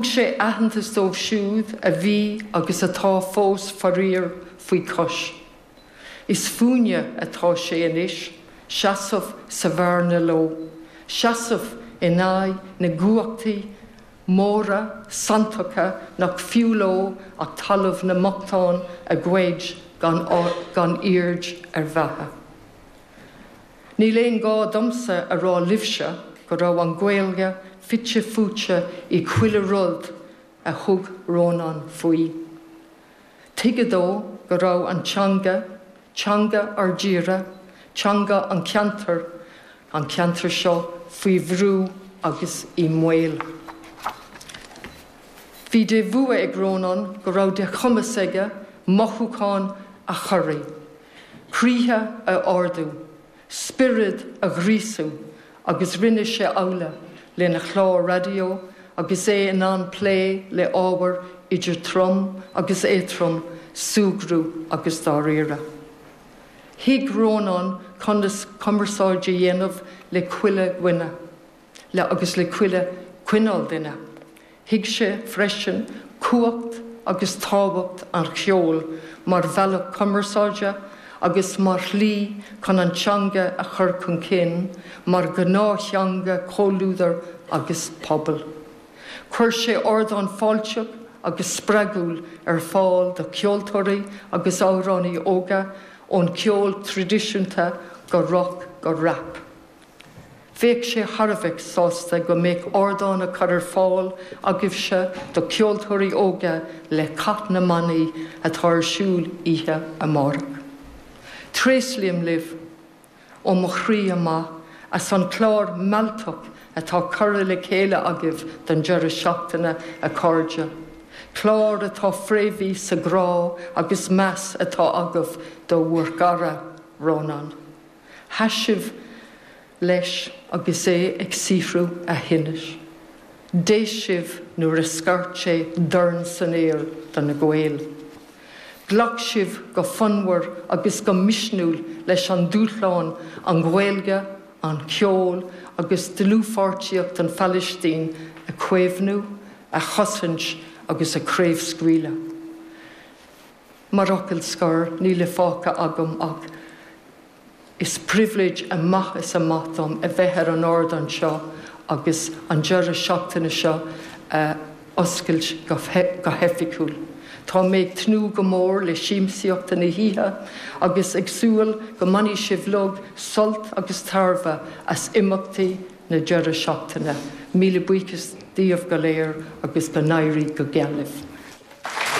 Thug sé aitheantas dóibh siúd a bhí agus atá fós faraor faoi chois. Is fúinne atá sé anois seasamh sa bhearna leo, seasamh in aghaidh na gcumhachtaí móra santacha nach fiú leo ach talamh na mbochtán a ghoid gan aird ar bheatha. Níl aon gá domsa a rá libhse go raibh an Ghaeilge fite fuaite i chuile rud a thug Rónán faoi. Tuigeadh dó go raibh an teanga, teanga ár dtíre, teanga an cheantair, an cheantair seo, faoi bhrú agus i mbaol. Bhí de bhua ag Rónán go raibh de chumas aige mothúcháin a chorraí. croíthe a ardú, spiorad a ghríosú agus rinne sé amhlaidh lena chlár raidió agus é in ann plé le ábhair idir trom agus éatrom, súgradh agus dáiríre. Thuig Rónán conas cumarsáid a dhéanamh le chuile dhuine. le agus le chuile cineál duine. Thuig sé freisin cumhacht agus tábhacht an cheoil mar bhealach cumarsáide agus mar shlí chun an teanga a chur chun cinn mar ghnáth-theanga comhluadair agus pobail. Chuir sé ardán fáilteach agus spreagúil ar fáil do cheoltóirí agus amhránaithe óga ón cheol traidisiúnta go roc go rap. Bheadh sé thar a bheith sásta go mbeadh ardán á chur ar fáil agaibhse do cheoltóirí óga le Cath na mBannaí atá ar siúl oíche amárach. Tréaslaím libh ó mo chroí amach as an chlár mealltach atá curtha le chéile agaibh don deireadh seachtaine, a chairde, clár atá fréamhaithe sa ghrá agus meas atá agaibh do bhur gcara, Rónán. Sheas sibh leis agus é ag saothrú a thinnis. D'éist sibh nuair a scairt sé dorn san aer do na Gaeil. Ghlac sibh go fonnmhar agus go misniúil leis an dúshlán, an Ghaeilge, an ceol agus dlúthpháirtíocht an Phalaistín a chaomhnú, a chosaint agus a chraobhscaoileadh. Mar fhocal scor, níl fágtha agam ach is pribhléid amach is amach dom a bheith ar an ardán seo agus an deireadh seachtaine seo a oscailt go hoifigiúil. Tá mé ag tnúth go mór le siamsaíocht na hoíche agus ag súil go mbainfidh sibh uilig sult agus tairbhe as imeachtaí na deireadh seachtaine. Míle buíochas díobh go léir agus go n-éirí go geal libh.